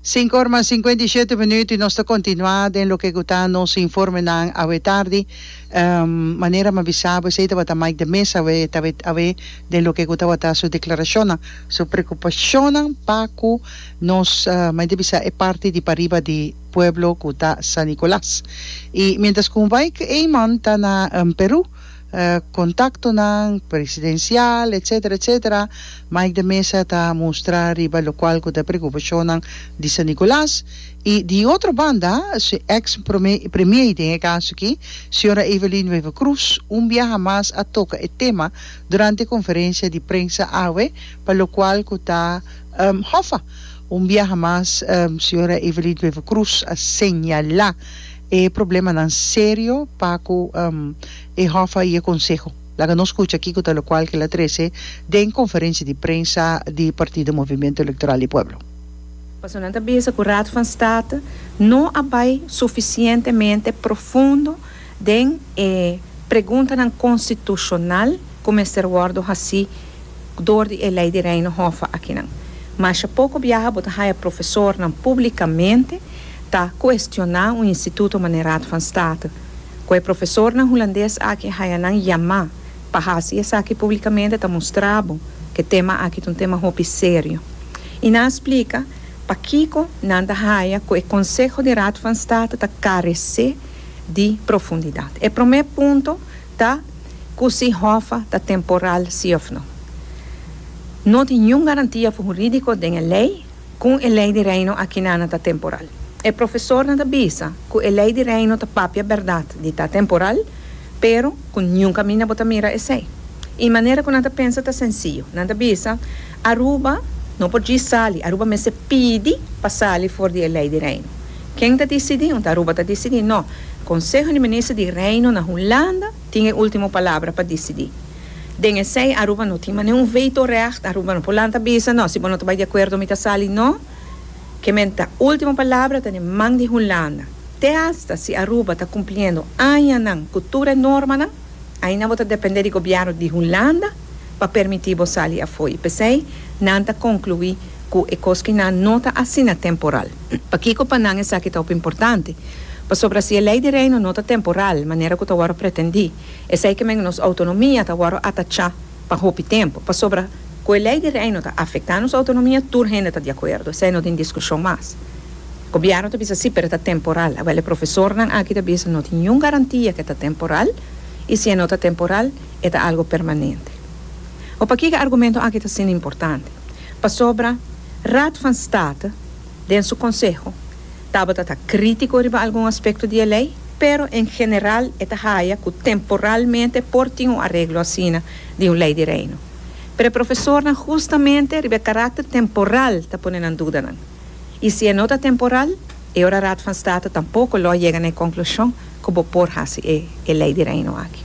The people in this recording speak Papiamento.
Sinku orma sinkuenta i shete minuut i nos ta kontinuá den loke ku ta nos informenan awe tardi. Manera mi a bisa bo esei tabata Mike de Meza awe ta awe den loke ku tabata su deklarashonnan, su prekupashonnan pa ku nos mester bisa e parti di pariba di pueblo ku ta San Nicolas. I mientras ku Mike Eman ta na Perú. contactonan presidencial etc. Etc. Mike de Meza ta mustra riba locual cu ta preocupacionnan di San Nicolas y di otro banda su ex Premier, den e caso aki, Sra. Evelyn Wever Croes, un biaha mas a toca e tema durante e conferencia di prensa awe pa locual cu ta hofa. Un biaha mas Sra. Evelyn Wever Croes a señala. E problemanan serio pa ku e hòf a i e konseho. Laga nos kucha kiko ta lokual ke el a trese den konferensia di prensa di partido Movimiento Electoral di Pueblo. Paso nan ta bisa ku Raad van State no a bai sufisientemente profundo den e preguntanan konstitushonal ku mester wòrdu hasi dor di e Lei di Reino Hòf akinan. Masha poko biaha bo ta haya profesornan publikamente ta kuestioná un instituto manera Raad van State, ku e profesornan hulandes aki haya nan yamá pa hasi esaki públikamente ta mustra bo ku e tema aki ta un tema hopi serio. I nan a splika pakiko nan ta haya ku e konseho di Raad van State ta karesé di profundidat. E promé punto ta ku si hòfa ta temporal si òf no. No tin niun garantia jurídiko den e lei. Kon e Lei di Reino aki na na ta temporal? E profesornan ta bisa ku e Lei di Reino ta papia bèrdat di ta temporal, pero ku niun kaminda bo ta mira esei. E manera ku nan ta pensa ta sensiyu. Nan ta bisa, Aruba no por djis sali, Aruba mester pidi pa sali for di e Lei di Reino. Ken ta disidí? Unda Aruba ta disidí? No. Konseho di Minister di Reino na Hulanda tin e último palabra pa disidí. Den esei Aruba no tin mas niun veto recht, Aruba no por lanta bisa, no, si bo no ta bai di akuerdo mi ta sali, no, ke men ta ultimo palabra ta den man di Hulanda. Te hasta si Aruba ta kumpliendo añanan ku tur e normanan, ainda bo ta dependé di gobièrnu di Hulanda pa permití bo sali afoi. P'esei nan ta konkluí ku e kos ku nan no ta asina temporal. Pakiko pa nan esaki ta hopi importante? Pasobra si e Lei di Reino no ta temporal, manera ku ta wòrdu pretendí, Esei ke men nos outonomia ta wòrdu atachá pa hopi tempu, pasobra ku e Lei di Reino ta afektá nos outonomia, tur hende ta di akuerdo, esei no tin diskushon mas. Gobièrnu ta bisa sí, pero e ta temporal. Awel e profesornan aki ta bisa no tin niun garantia ke ta temporal, i si e no ta temporal, e ta algu permanente. Hopi akí ku e argumento aki ta asina importante, pasobra Raad van State, Den su konseho, Tabata ta krítiko riba algun aspekto di e lei, pero en general e ta haya ku temporalmente por tin un areglo asina di un lei di Reino. Pero e profesornan hustamente riba e karakter temporal ta pone nan duda nan. I si e no ta temporal, e ora Raad van State tampoko lo a yega na e konklushon ku bo por hasi e e lei di Reino aki.